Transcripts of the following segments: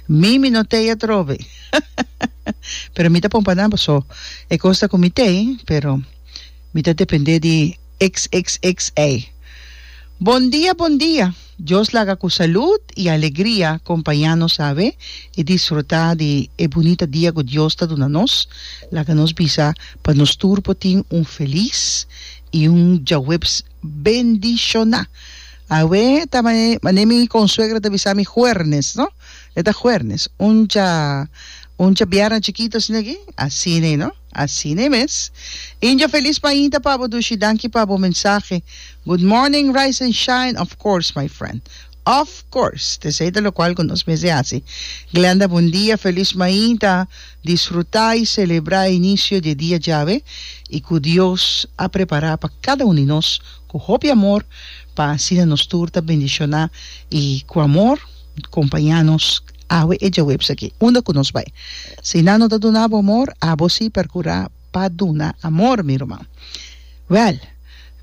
Mi mi no tei atrobe pero mi ta pompa nan paso e cosa cu mi tei pero mi ta depende di xxxa. Bon dia bon dia Dios laga cu salud y alegria compaña nos awe y disfruta di e bunita dia cu Dios ta duna nos laga nos bisa pa nos tur por tin un feliz y un djaweps bendishoná. Awe ta mane mi con suegra ta bisa mi huernes no e ta huernes uncha uncha bierna chikito asina aki asina no asina mes injo felis mainta pa bo dushi danki pa bo mensahe good morning rise and shine of course my friend. Of course, tesey ta locual cu nos mester haci. Glenda Bon dia, feliz mainta, disfruta y celebra e inicio di e dia djabe y cu Dios a prepara pa cada un di nos cu hopi amor pa asina nos tur ta bendiciona y cu amor compaña nos awe e djawebs aki unda cu nos bay. Si nan no ta duna abo amor, abo si percura. pa duna amor, mi ruman. Wèl,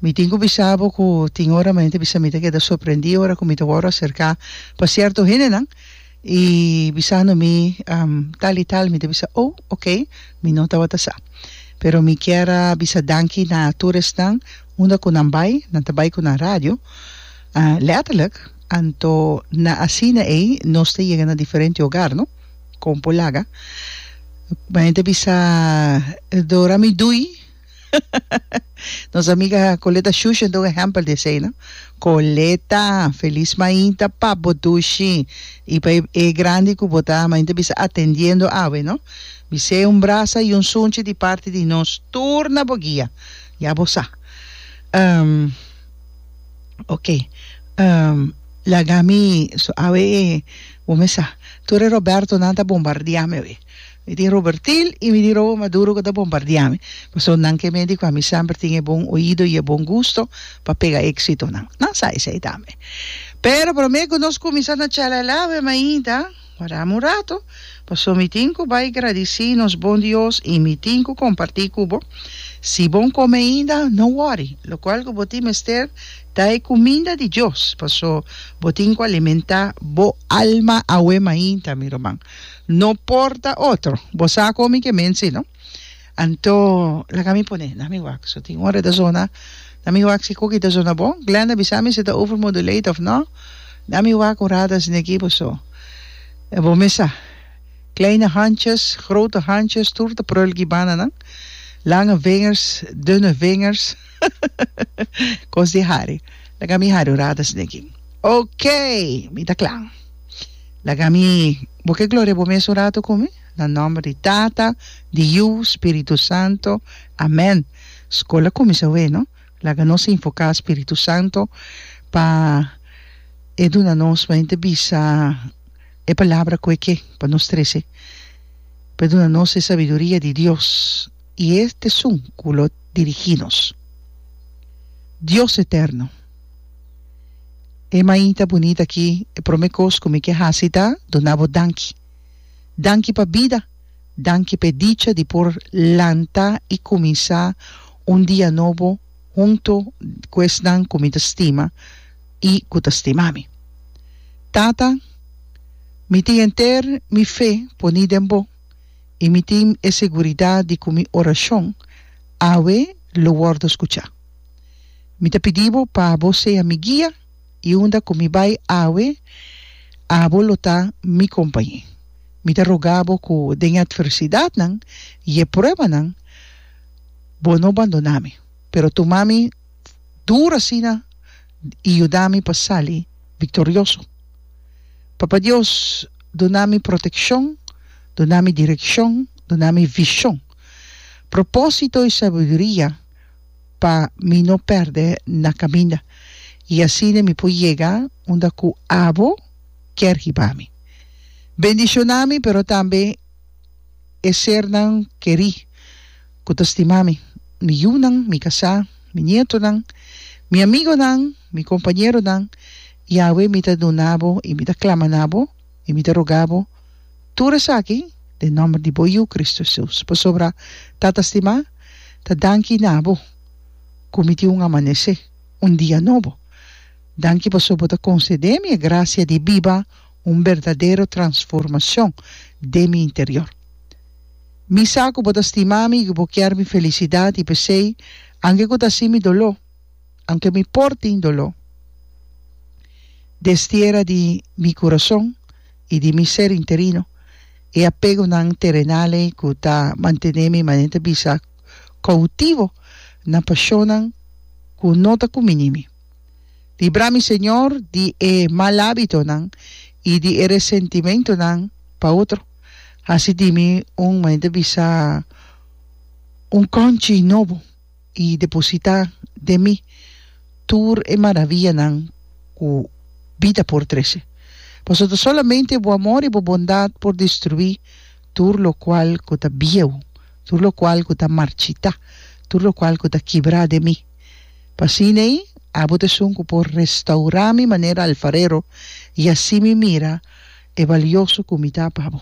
mi tin ku bisa bo ku tin ora mente bisa mi ta keda sorprendí ora ku mi ta wòrdu aserká pa sierto hendenan i bisando mi tal i tal, mi ta bisa, Oh, okay, mi no tabata sa. Pero mi kier a bisa danki na tur esnan unda ku nan bai, nan ta bai ku nan radio, lèterlik, anto na asina ei nos ta yega na diferente ogar, no? Kon por laga? Kuma henter bisa Dora mi dui. Nos amiga Coleta Shushi a dor un ehempel di esei, no? Coleta, felis mainta pa bo dushi i pa e grandi ku bo ta mainta bisa atendiendo awe, no? Bis'ei un brasa i un sunchi di parti di nos tur na bo guia. Ya bo sa. Oke, lagami so awe e. Bo me sa, tur e Robertonan ta bombardiami awe. Mi tin Robertil i mi tin Robo Maduro ku ta bombardiami, pasobra nan ke medi ku ami semper tin e bon oido i e bon gusto pa pega éksitonan. Nan sa esei tambe. Pero promé ku nos kuminsá na chelelá awe mainta warami un ratu, pasobra mi tin ku bai gradisí nos bon Dios i mi tin ku kompartí ku bo. Si bon kome ainda, no wòri, lokual ku bo tin mester Ta e cuminda di Dios, paso bo tin cu alimenta bo alma awe mainta, mi ruman. No porta otro, bo sa con mi ke mensi, no? Anto, laga mi pone na mi wak. So tin ora e ta zona na mi wak, si Cookie ta zona bon. Glenda, bisa mi si ta overmodulate of no. Na mi wak un rato asina aki, paso e bo mes sa. Kleine handjes, grote handjes, tur ta prul ki bananan. Lange vingers, dunne vingers. Cos di hari. Laga mi hari orada sende aki. Ok, mi ta cla. Laga mi bo ke gloria bo mes un rato cu mi. Na nomber di Tata, di Yu, Spiritu Santo. Amen. School a cuminsa awe no. Laga nos invoca Spiritu Santo pa e duna nos pa henter bisa e palabra cu e ke pa nos trece. Pa e duna nos e sabiduria di Dios. i es t'esun ku lo dirigí nos. Dios eterno. E mainta bunita akí, e promé kos ku mi ke hasi ta duna Bo danki. Danki pa bida, danki p'e dicha di por lanta i kuminsá un dia nobo huntu ku esnan ku mi ta stima i ku ta stima mi. Tata, mi tin henter mi fe poní den Bo. i mi tin e seguridat di ku mi orashon awe lo wòrdu skuchá. Mi ta pidi bo pa bo sea mi guia i unda ku mi bai awe abo lo ta mi kompañé. Mi ta rogá bo ku den e atversidatnan i e pruebanan bo no bandoná mi, pero tuma mi. dur asina y yuda mi pa sali victorioso. Papa Dios duna mi proteccion, duna mi direccion, duna mi vision, proposito y sabiduria pa mi no perde na caminda y asina mi por yega unda cu abo kier hiba mi. Bendiciona mi pero tambe e sernan keri. ku ta stima mi, mi yunan, mi kasá, mi nietonan, mi amigonan, mi kompañeronan, Yawe, mi ta duna bo i mi ta klama na bo i mi ta rogá bo tur esaki den nòmber di bo Yu, Kristu Hesus. Pasobra, Tata stimá, ta danki na bo ku mi tin un amanesé, un dia nobo. Danki pasobra bo ta konsedé mi e grasia di biba un berdadero transformacion den mi interior. Mi sa cu bo ta stima mi y cu bo kier mi felicidad y p'esey, anke cu ta así mi doló, anke mi por tin doló, destiera di mi curason y di mi ser interino e apegonan terenal ey cu ta mantene mi manera bisa cautivo na pasionnan cu no ta cuminimi. Libra mi, Señor, di e mal ábitonan i di e resentimentonan pa otro. Hasi di mi un mane ta bisa un kònchi nobo i depositá den mi tur e maravianan ku bida por trese. Pasobra ta solamente bo amor i bo bondat por destruí tur lokual ku ta bieu, tur lokual ku ta marchitá, tur lokual ku ta kibrá den mi. P'asina ei, abo ta esun ku por restaurá mi manera alfarero i así mi mira e balioso ku mi ta pa bo.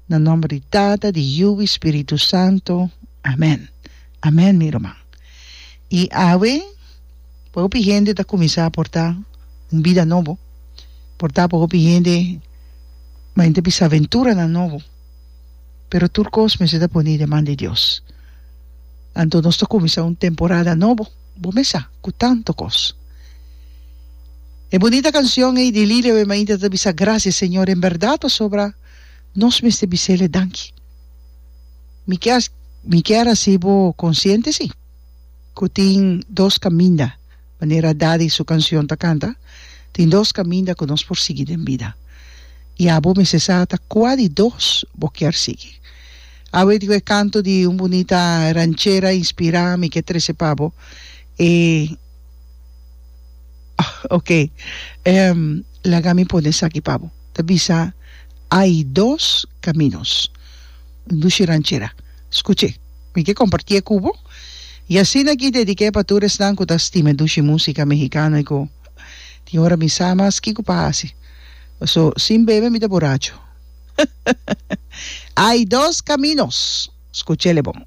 Na nòmber di Tata, di Yu i Spiritu Santu, amèn. Amèn, mi ruman. I awe, pa hopi hende ta kuminsá portá un bida nobo. Por ta pa hopi hende, ma enta bisa aventuranan nobo. pero tur kos mester ta poni i de man di Dios. Anto nos ta kuminsá un temporada nobo, bo mes sa, ku tantu kos. E bunita kansion ei di Lilia Wee Mainta ta bisa, Grasia Señor, en bèrdat pasobra nos mester bis'Ele danki. Mi kier mi kier hasi bo konsiente si ku tin dos kaminda. Manera Daddy su cancion ta canta, Tin dos caminda cu nos por sigui den bida. Y abo mester sa ata cua di dos bo kier sigui. Abo e dico e canto di un bunita ranchera inspira mi ke trece pa bo e ok ehm laga mi pone esaki pa bo. Ta bisa Hay dos caminos. Un dushi ranchera. Scuche, mi ke compartie cu bo. Y asina ki dedique pa tur esnan cu ta stima e dushi musica mexicano y cu tin ora mi sa mas kico pa haci. Paso sin bebe mi ta boracho. Hay dos caminos. Scuchele bon.